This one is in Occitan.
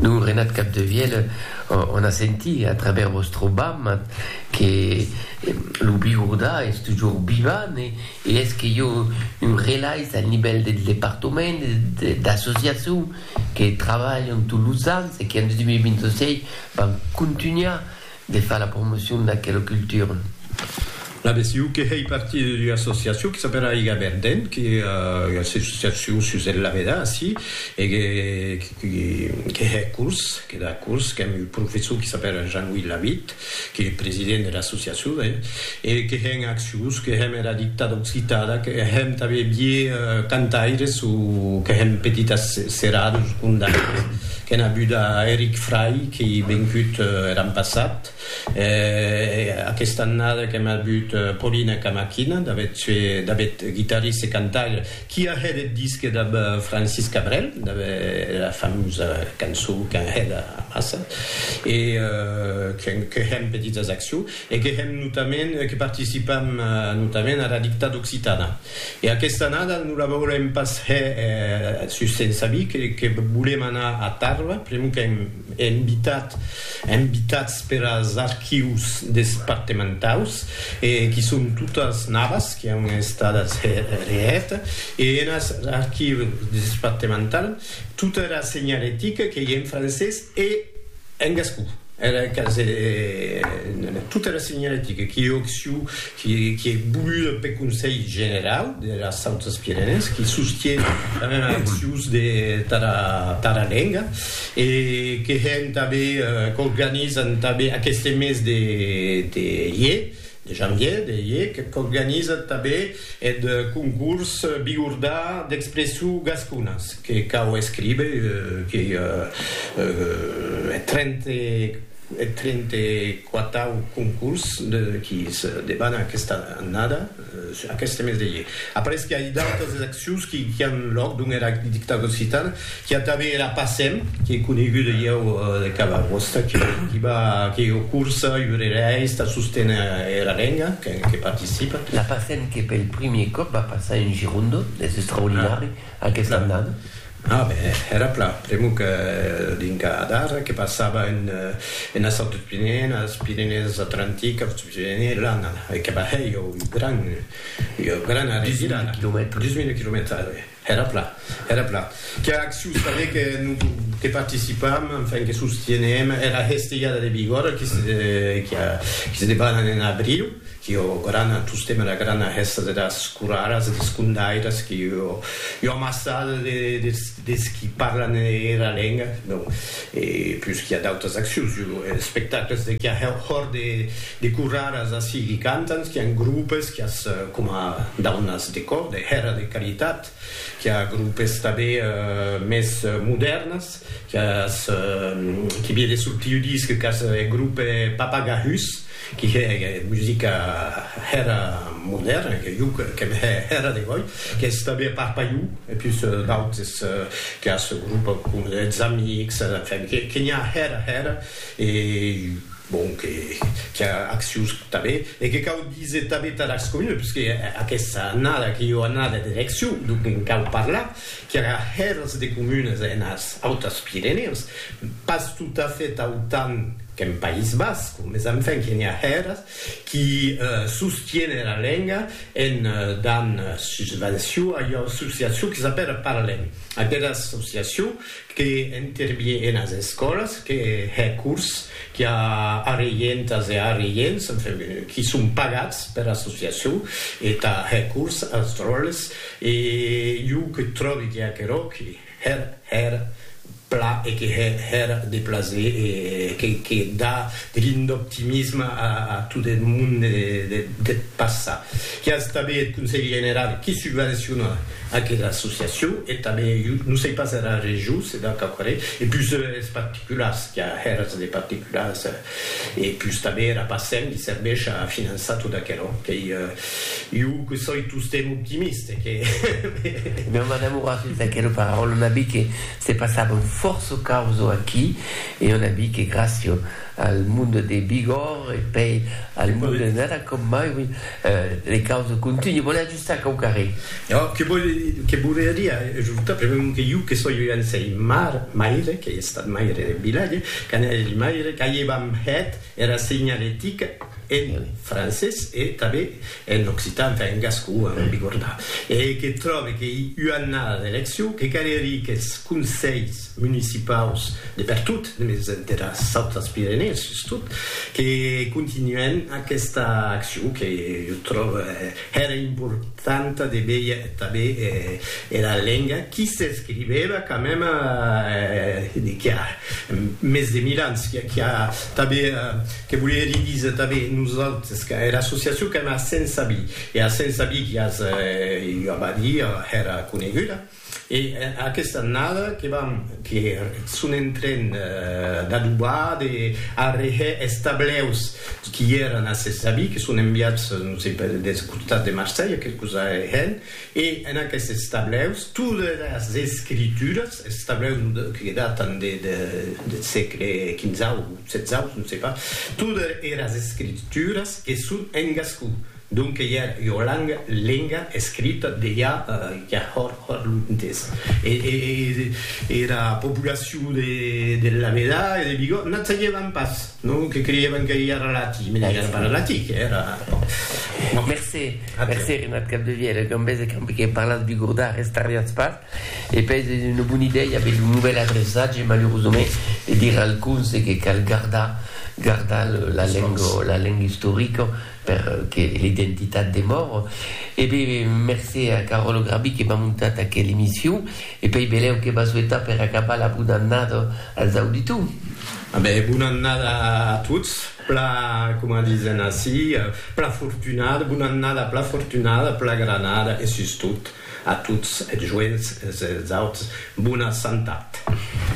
Lo Renat Capdevièlh o n'a sentit a travèrs vòstre bamma que lo Bigordà es tujor vivant e es que jo un relais al nivèl del departament e d'associacion que trabalhan tot los ans e que en 2026 van contunhar De far la promocion d'aquela cultura. La BCU que hèi partir d'ua associacion que s'apèla Aiga Verdent, que ua associacion sus el Laveda, ací, e que que hè curs, que da curs, qu'èm un professor que s'apèla Jean-Louis Lavitte, que ei president de l'associacion, E que hèm acciós, que hèm era dicta d'occitada, que hèm tanben vier cantaires o que hèm petitas serados condaires, qu'èn a buda Eric Fray qui ei vencut er an passat, e aquesta annada qu'èm a but Paulina Camaquina, d'avet guitarrist e cantaire, qui a hèt eth disque dab Francis Cabrel, dab era famosa cançó qu'èn hèt amassa, e que hèm petitas acciós. e que hèm notament que participam notament ara dictada occitana e aquesta annada non la volem pas hè sus se'n sabir que volem anar a Tàrrega pr'amor qu'èm invitat invitats per as archius despartementaus e qui son totas navas qui an estadas hè hèt e enas archius despartemental tota era senhalética qu'ei en francés e En gascon, era casa de tot era senhoretica qui òc siu, qui ei voluda peth Conselh Generau deras Autas Pirenèes, qui sostie era meva acciuns de tara lenga e que hè entà bèir, qu'organizan entà bèir aqueste mes de ier, De janvier de hec qu'organiza tabé eth concurs Bigordà d'expressou gasconas que cau escribe qu'ei eth trente quatau concurs qui se debana aquesta annada, aqueste mes de hec. Après que ai d'autas accions qui an lòc dons era dictadura occitana, Qu'i a tanben era Passem, qu'ei coneguda ieu de cada costat, qu'i va que ieu cursa, iurereis, tà sosténer era lenga, que participa. La Passem que pel primier còp va passar en Girondo, es extraordinari aquesta annada. A ben, era plan, pr'amor que dinca d'ara que passava enes autres Pirenèes, Pirenèes Atlantiques, Autres Pirenèes, lan e que va hèr ieu un gran, ieu gran arrevirada. Dix mila quilomètres. Dix mila quilomètres, a ben. Era plan, era plan. Qu'a acciu saber que non que participam, enfin que sostienem era hestelhada de Bigòrra qui se qui a qui se debanan en abriu, qui ò grana tostemp era grana hèsta de das coraras e des condairas qui ò io amassada de des des qui parlan era lenga, non e plus qui a d'autas accius, io espectacles de qui a hèu hòr de De coraras ací qui cantan, qui an grupes, qui as coma daunas de còr, de hèra de caritat, qui a grupes tanbé mès modèrnas, qui as qui vie de sortir ua disc qu'as eth grupe Papagahus, qui hè musica hèra modèrna, que jo qu'èm hè hèra de gòi, qui as tanbé a part Paiu, e pus d'autes qui as grupe com eths Amics, enfin que n'i a hèra hèra e. Bon, que qu'i a accions tanben e que cau díser tanben tà las comunes, parce que aquesta annada qu'i ua annada d'eleccions, donc en cau parlar, qu'i aurà hèrs de comunes enas Autas Pirenèus, pas tot a fait autant qu'en País Basc, mes enfin que n'i a hèrs qu'i sostienen la lenga en dan susvenció a ua associacion que s'apèla Parlem, aquera associacion que intervie enas escòlas, que hè cors qui a arreientas e arreients, enfin, qui son pagats per associacion e tà hè cors als dròlles e jo que tròbi que aquerò que hè hèr pla e que hè hèr de plaser e que que dà de l'ind'optimisme a a tot eth monde deth passat. Qu'i a estabe eth Conselh General qui subvenciona Aquela associacion e tanben eu non sei pas era region se dà quauquarren e pus es particulars qu'a hèras de particulars e pus tanben era PACEM li serveish a finançar tot aquerò qu'ei eu que soi tostemp optimist e que Meu madame Horacius d'aquera paraula on a vist que se passavan fòrça causo aquí e on a vist que gràcia al monde de Bigòrre e pei al monde de Nara com mai oui les causes continuen. Sac au carré. Ò, que vòl, que volia dire ajortar, premèu que iu que soi un sei mar, maire, qu'ei estat maire de vilatge, qu'anèri maire, qu'aievam hèt era seignalética en francés e tanben en occitan, enfin en gascon, a non bigordar, e que tròbe qu'ei ua annada d'eleccion, que caléri qu'es conselhs municipaus de pertot, mès dera Saut als Pirenèus sustot, que continuèn aquesta accion que jo tròbe, Hèra importanta de veir tanben era lenga qui s'escrivèva quand mème de qu'i a mès de mil ans, qui a tanben, que volie li díser tanben nosautres, que era associacion qu'èm a Sensabí, e a Sensabí qui as ua badia hèra coneguda. E aquesta annada que vam que son en tren d'adobar, de arreher es tableus qui èran a ses avis, que son enviats, non sei per, deth costat de Marselha, que cosa hèn, e en aquestes tableus todas es escrituras, es tableus que datan deth sègle quinzau, setzau, non sei pas, todas eras escrituras que son en gascon. Donc que ja ua langa, lenga, escrita de ja ja hòr hòr luntès. E era populacion de de Lameda e de Bigòt n'a tsagevan pas, non? Que creievan que ja era latí, me n'ai ara pas latí, que era bon. Mercé, mercé Renat Capdevièlh, e ben bèse qu'ambe que parlatz bigordà restariatz pas. E pèi es ua bona idèia aver lo novèl adreçat, je malurosament de dire alcun, se que cal gardar gardar la lenga la lenga istorica. per que l'identitat demòr e be mercé a Caròlo Grabi que m'a montat aquel emission e pei belèu que m'a souetat per acabar la bona annada als auditors. A be bona annada a tots, pla coma disen ací pla fortunada, bona annada pla fortunada, pla granada e sustot a tots es joents e es autres bona santat.